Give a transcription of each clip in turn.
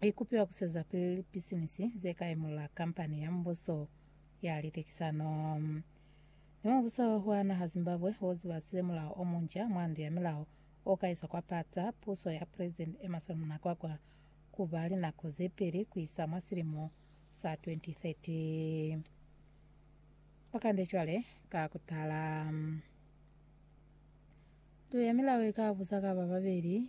I kupiwa ku swezapili lipisinisi ze ka imula kampani ya mubuso ya litekisano. Mi mubuso wa naha Zimbabwe wo zibasile mulao o munca mwa ndu ya milao o ka iswa kwa pata puso ya President Emmerson Mnangagwa ku ba linako ze peli ku isa mwa silimo sa 2030. Ba kande cwale ka ku tala. Ndu ya milao i ka busa ka ba babeli.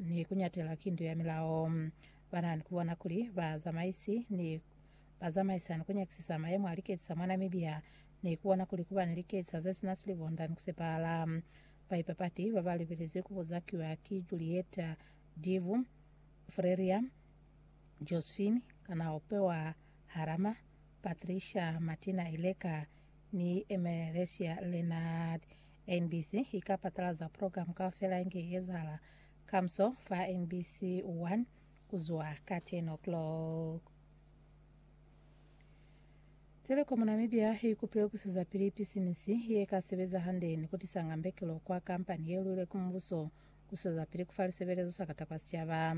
ni kunyatela kintu ya milao. Bana ni kubona kuli ba zamaisi ni ba zamaisa ni kunyakisisa mayemo a liketsi sa mwa Namibia ni kubona kuli kuba ni liketsi sa ze sina silibonda ni kusepahala. Baipapati baba libelezi kubuzakiwa ki Julieta Divu, Freria Josephine Kanaope wa Harama, Patricia Martina Ileka ni Emelesia Leonard NBC i ka patalaza program kaufela inge i ezahala kamuso fa NBC One ku zwa ka 10 o'clock. Telecom Namibia i kupile ku sizapili pisinisi ye ka sebeza hande ni ku tisa ngambekelo kwa kampani ye lwile ku mubuso ku sizapili ku fa lisebelezo sa kata kwa sicaba.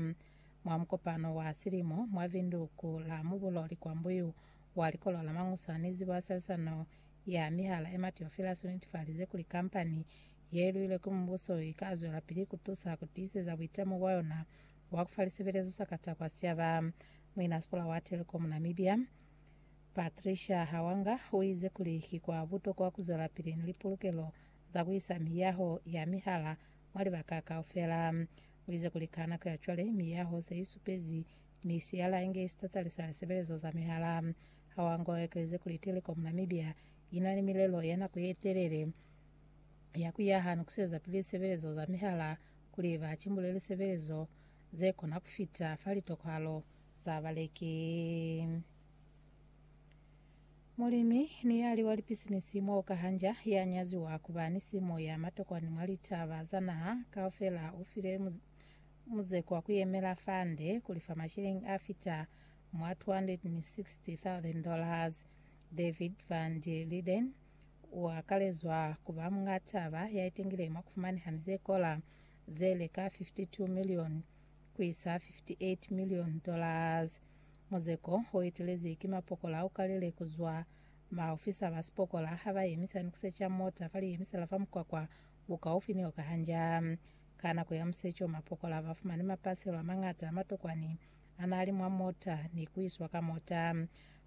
Mwa mukopano wa silimo mwa Vinduku la Mubulo Likwambuyu wa Likolo la Mangusa ni Zibo ya Salisano Ya mihala Emma Theophilus u netefalize kuli kampani ye luilwe ki mubuso i ka zwelapili ku tusa ku tiiseza buitamo bwa yona bwa ku fa lisebelezo sa kata kwa sicaba. Muinasikola wa Telkom Namibia, Patricia Hawanga, u ize kuli ki kwa butokwa ku zwelapili ni lipulukelo za ku isa miyaho ya mihala mwa libaka kaufela. U ize kuli ka nako ya cwale, miyaho se i supezi Mi si yala inge isitatali sa lisebelezo za mihala. Hawango ekeleze kuli Telecom Namibia ina ni milelo ya nako ye telele ya ku yaha ni ku sieza pili lisebelezo za mihala kuli ba cimbule lisebelezo ze kona ku fita fa litokohalo za baleki. Mulimi ni yali wa lipisinisi mwa Okahanja ya nyaziwa ku ba ni simo ya matokwa ni mwa litaba za naha kaufela u file Muzeko wa ku yemela fande ku lifa mashilingi a fita mwa $260,000. David van der Linden u akalezwa ku ba muñ'a taba ya itengile mwa ku fumaneha ni ze kola ze li ka 52 milioni ku isa 58 milioni dollars. Muzeko o etelezi ki mapokola a ukalile ku zwa maofisa ba sipokola ha ba yemisa ni ku secha mota fa liyemisa la fa mukwakwa bukaufi ni o ka hanja. Ka nako ya museco, mapokola ba fumani mapaselo a mañata a matokwani a n'a li mwa mota ni ku iswa ka mota.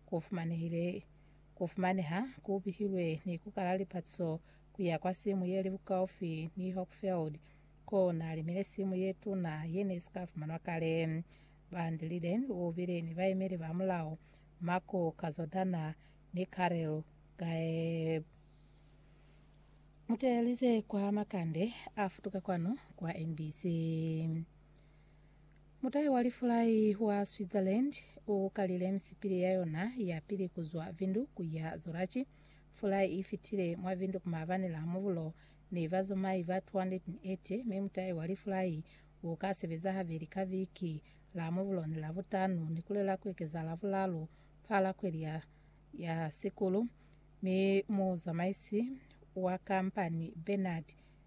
Ku fumanehile ku fumaneha ku bihilwe ni ku kala lipatiso ku ya kwa simu ye li bukaufi ni Hochfeld, k'o n'a limile simu ye tuna ye n'e si ka fumanwa kale. Van der Liden u bile ni baemeli ba mulao, Marco Cazodana ni Karel Gaeb. Mu teelize kwa makande a futuka kwanu kwa MBC. Mutai wa lifulai wa Switzerland u kalile misipili ya yona ya pili ku zwa Vindu ku ya Zorachi. Fulai i fitile mwa Vindu ku maabani la mubulo ni bazamai ba 280, mi mutai wa lifulai u ka sebeza habeli ka viki, la mubulo ni la butanu, ni ku lela ku ekezahala bulaalu fa la kweli ya ya sikulu, mi muzamaisi wa kampani Bernard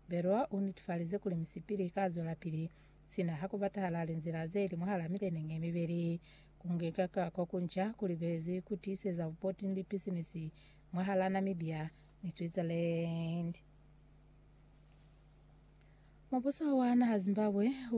Berroa u nitifalize kuli misipili i ka zwelapili sina ha ku batahala linzila ze li mwahal'a mileneñi ye mibeli. Ku nyika ka ko ku nca ku libezi ku tiiseza bupoti ni lipisinisi mwahal'a Namibia ni Switzerland. Mubuso wa naha Zimbabwe u